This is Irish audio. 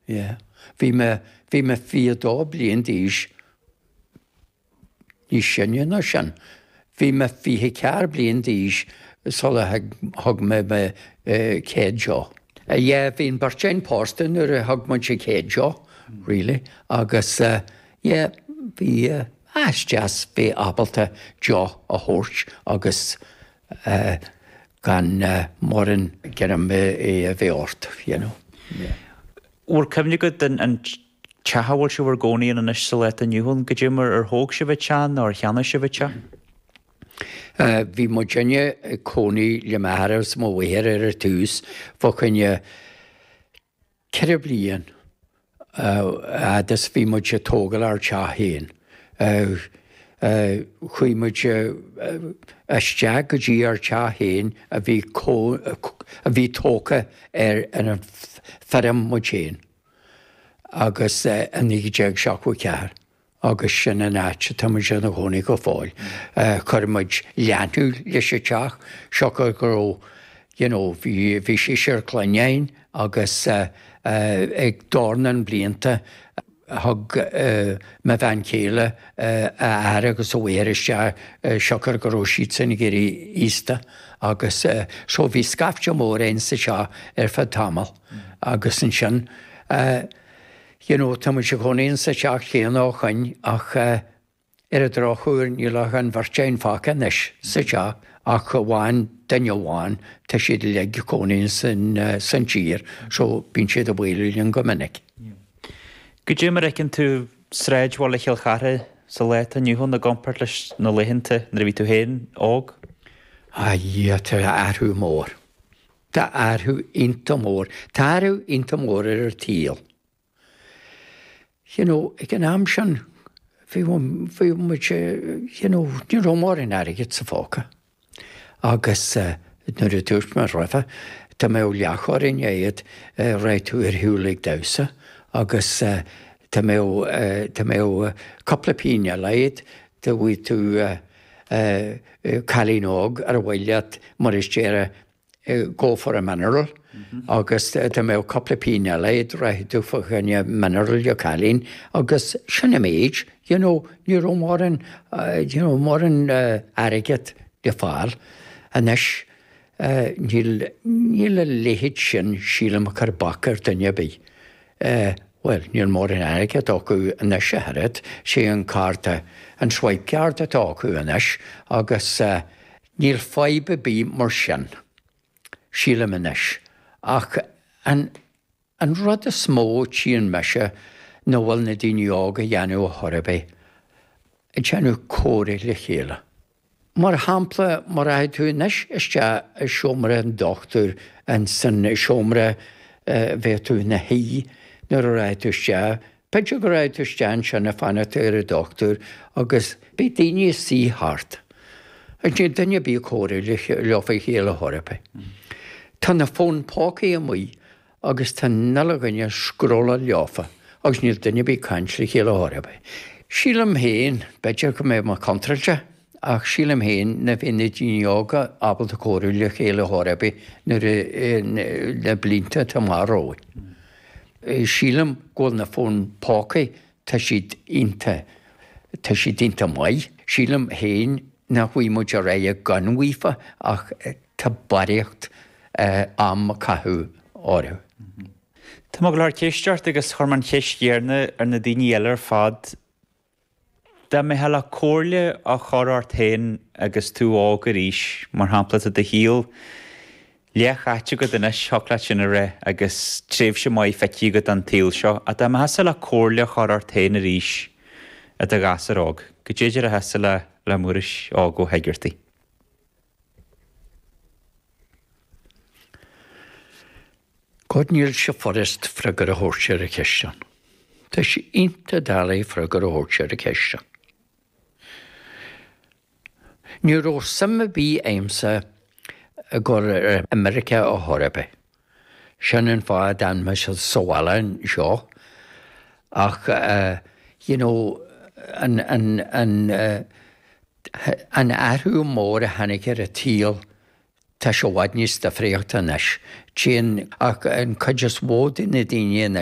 yeah. Bhí mé, bhí mé fiche dó bliain d'aois, níos sine ná sin, bhí mé fiche ceathair bliain d'aois sula thug mé mo chéad deoch. Yeah, bhí an bheirt againn pósta nuair a thug muid an chéad deoch, really, agus yeah, bhí, ah, is deas bheith ábalta deoch a thabhairt agus gan mórán greim a bheith ort, you know. Bhur cuimhne go dtí an teach a bhfuil sibh in bhur gcónaí ann anois sa lá atá inniu ann goidé mar ar thóg sibh an teach nó ar cheannaigh sibh an teach? Bhí muidinne ag cónaí le m'athair agus mo mháthair ar tús. Bheadh an Ceithre bliain a fhad is bhí muid ag tógáil ár dteach féin, chuaigh muid isteach go dtí ár dteach féin a bhí tógtha ar an fheirm muid féin agus i 1974, agus sin an áit atá muid ina gcónaí go fóill. Chuir muid leanúint leis an teach, siocair go raibh, you know, bhí, bhí seisear clainne againn agus ag dornán mblianta thug mo bhean chéile a hathair agus a máthair isteach siocair go raibh siadsan ag éirí aosta agus so bhí scaifte mór againn sa teach ar feadh tamall agus ansin, You know, tá muid inár gcónaí insa teach chéanna ó shoin ach ar an drochuair níl ach an bheirt againn fágtha anois sa teach ach amháin duine amháin, tá siad uilig ina gcónaí san tír so bíonn siad ag bualadh linn go minic. Yeah. Goidé mar a fheiceann tú sráidbhaile Chill Charthaigh sa lá atá inniu ann i gcompáirt leis na laethanta nuair a bhí tú féin óg? Ah yeah, tá athrú mór. Tá athrú iontach mór. Tá athrú iontach mór ar an tsaol. You know, ag an am sin, bhí, bhí muid, you know, ní raibh mórán airgid sa phóca. Agus mar a dúirt mé roimhe, dá mbeadh leathchoróin agat, rachadh tú ar shiúl ag damhsa agus dá mbeadh, dá mbeadh cúpla pingin eile agat, dá mbeadh tú, a cailín óg, ar aghaidh leat mar a déarfá go for a mineral agus dá mbeadh cúpla pingin eile agat rachadh tú fá choinne mineral don chailín agus sin an méid, you know, ní raibh mórán, you know, mórán airgead le fáil. Anois. Níl, níl a leithéid sin, sílim, ag cur bac ar dhuine ar bith. Bhuel, níl mórán airgid acu anois ag dul thart. Sé an cárta, an swipe card atá acu anois agus níl fadhb ar bith mar sin, sílim anois. Ach an. An rud is mó tchíonn mise ná bhfuil na daoine óga ag déanamh a chor ar bith, ag déanamh comhráidh le chéile. Mar shampla, má rachaidh tú anois isteach i seomra an dochtúir, an seomra, bheadh tú i do shuí nuair a rachaidh tú isteach, B'fhéidir go raibh tú istigh ansin ag fanacht ar an dochtúir agus beidh daoine istigh thart agus níl duine ar bith ag comhrá leofa le chéile a chor ar bith. Tá na fóin póca amuigh agus tá 'ach uile dhuine ag scrólláil leofa agus níl duine ar bith ag caint le chéile a chor ar bith. Sílim féin, b'fhéidir go mbeadh mé contráilte, ach sílim féin nach mbeidh na daoine óga ábalta comhrá le chéile a chor ar bith ins na blianta atá amach romhainn. Sílim go bhfuil na fóin póca, tá siad iontach, tá siad iontach maith. Sílim féin nach bhfaighidh muid ar aghaidh gan a mbeith díofa ach tá barraíocht am á chaitheamh orthu. Tá go leor ceisteanna curtha ort agus chuir mé an cheist chéanna ar na daoine eile ar fad. Dá dtiocfadh leat comhairle a chur ort féin agus tú óg arís, mar shampla, tá do shaol leathchaite agat anois, thiocfadh leat sin a ráit, agus tréimhse maith feicthe agat den tsaol seo, ach dá dtiocfadh leat comhairle a chur ort féin arís i do ghasúr óg, cad é a déarfá le Muiris Óg Ó hEigeartaigh? God níl sé furast freagar a thabhairt ar an cheist sin. Tá sé iontach doiligh freagar a thabhairt ar an cheist sin. Ní raibh suim ar bith a'msa a ghabháil go America a chor ar bith. Sin an fáth a d'fhan mé sa bhaile anseo. Ach you know an, an, an, an athrú mór a tháinig ar an tsaol, tá sé i bhfad níos difríochta anois. Téann an chuid is mó de na daoine anois,